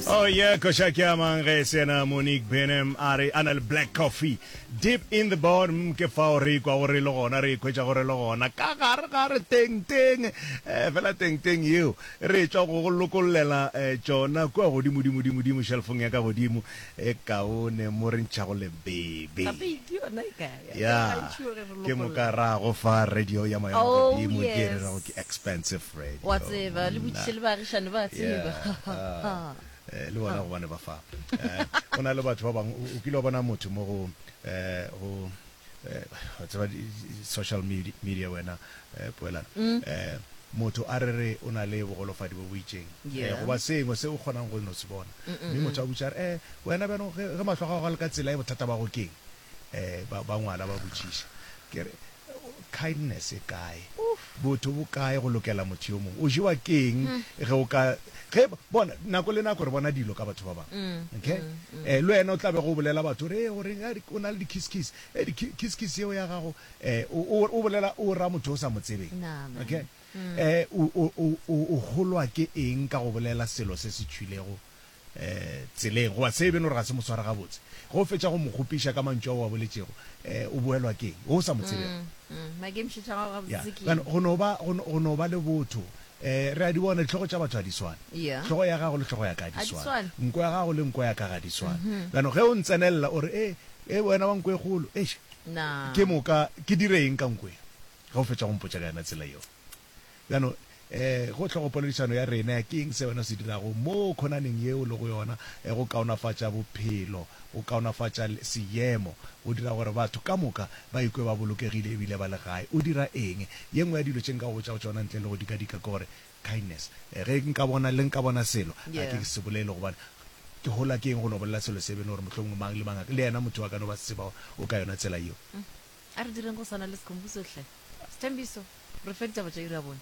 Oh yeah, koša ke a mang ge se yena Monique Benem a re a na le black coffee deep in the bottom ke fao re ikwa gore le gona re ikhwetša gore le gona ka gare ga re teng teng eh, fela teng teng yeo re tšwa go go lokollela eh, tšona kua godimo dimo dimo dimo shelfong ya ka godimo e kaone mo re ntšhago lebebe Ya, ke moka ra go fa radio ya moya wa Oh, godimo ke e re yes. rago ke expensive radio. Wa tseba, le monna. botšiše le baagišane ba a tseba. Yeah, ah, eh, le bona gobane ba fa Eh, go na le batho ba bangwe o- o kile wa bona motho mo go eh, go eh, wa tseba di- di- social medi- media wena eh, poelana Mm. Eh, motho a re re o na le bogolofadi bo bo itšeng Eh, Yeah. goba sengwe se o kgonang go no se bona Mm, mm, mme motho a butša re eh wena bjanong ge ge mahlo a gago a le ka tsela e bothata ba go keng ba, ba ngwala ba botšiša. Ke re, Kindness e kae? Botho bo kae go lokela motho yo mongwe? O jewa ke eng ge o ka, ge, bona, nako le nako re bona dilo ka batho ba bangwe, okay? Le wena o tla bego o bolela batho, o re, ee, o reng, a, o na le di-kiss-kiss. Ee, di-kiss-kiss yeo ya gago, o, o, o bolela, o ra motho o sa mo tsebeng, okay? O, o, o, o, o golwa ke eng ka go bolela selo se se tšhwilego tseleng, goba se e beno gore ga se mo swara gabotse. Ge o fetša go mo kgopiša ka mantšu ao a boletšego, o boelwa ke eng? O sa mo tsebego. Go no ba, go no ba le botho. Re a di bona, ditlhogo tša batho ga di swane. Hlogo ya gago le hlogo ya ka ga di swane. Nko ya gago le nko ya ka ga di swane. Jaanong ge o ntsenelela o re, Ee, wena wa nko e kgolo, eish, ke moka ke dire eng ka nko ye? Ge o fetša go mpotša ka yona tsela yeo. Bjalo, go hlogopoledišano ya rena, ke eng se wena o se dirago mo khonaneng ye o lego yona go kaonafatša bophelo, go kaonafatša seemo, go dira gore batho ka moka ba ikwe ba bolokegile e bile ba le gae? O dira eng? Ye nngwe ya dilo tše nka go botšago tšona ntle le go dikadika ke gore, kindness, ge nka bona, le nka bona selo, ga ke se bolele gobane ke hola ke eng go no bolela selo se bene gore mohlomongwe mang le mang a ka, le yena motho yo a ka no ba se tseba gore o ka yona tsela yeo. A re direng go swana le Sikhumbuso hle. Sthembiso, re fe ditaba tša iri ya bone.